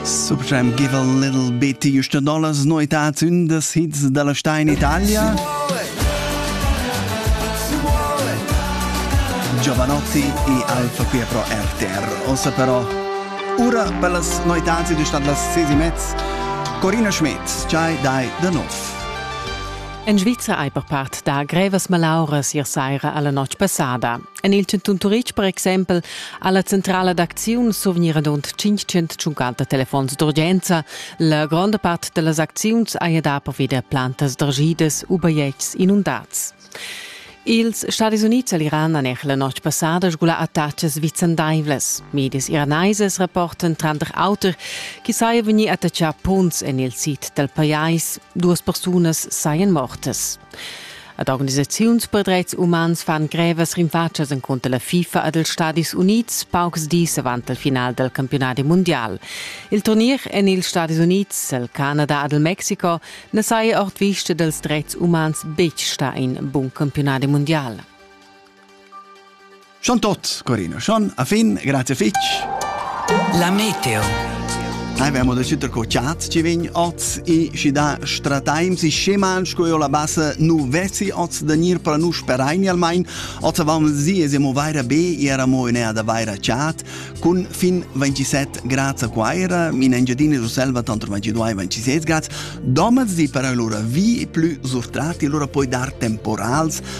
Subjam give a little bit to your dollars noitads in the hits della sta in Italia. Giovanotti e Alfa qui pro RTR. Ossa però ura per las noitads di statt las sesi mezz. Corina Schmidt, Chai dai da nov. En Sviza ei per part da grevas malauras ier saira alla notg passada. En il chantun Turitg per exempel ha la centrala d'acziun survgnir adont 500 tschuncater telefons d'urgenza. La gronda part da las acziuns haja da pervi da plantas dargidas u bajetgs inundads. Ils Stadis Unids e l'Iran han la notg passada sgulà attachas vicendaivlas. Medis iraneses rapportan tranter auter che saja vegnì attachà punts en il sid dal pajais. Duas persunas sajan mortas. Ad organisaziuns per dretgs umans fan grevas rinfatschas encunter la FIFA ed els Stadis Unids paucs dis avant il final dal campiunadi mundial. Il turnier en ils Stadis Unids, il Canada ed il Mexico na saja ord vista dals dretgs umans betg stà in bun campiunadi mundial. Schon tot, Corino, schon a fin, grazie fitch. La meteo. Abbiamo da ciuter co chat ci vegn oz e ci da strataim si scheman sco io la bassa nu vessi oz da nir para nu sperain almain oz avam si es mo vaira be era mo in da vaira chat cun fin 27 grazie quaira in Engiadina du Selva tanto 22 e 26 grazie domaz di para lura vi più surtrati lura poi dar temporals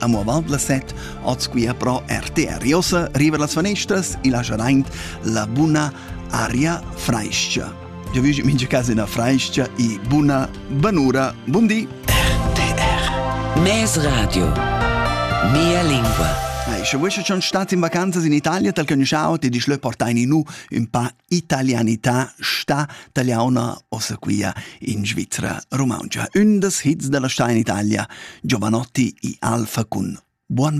Amo avant las 7 oz quia pro RTR Josse riva las fanestras e lasciaint la buna aria frais-cha. Jo vüsch mincha casa ina frais-cha e buna banura. Bun di! RTR Mes Radio Mia lingua Ei, sche vuoi schon stat in vacanzas in Italia, tal conosciau, ti dici leu portai ni nu un pa italianità sta taliauna ossa quia in Svizra rumauntscha. Ün das hits da la sta in Italia, Giovanotti i Alfa cun Buon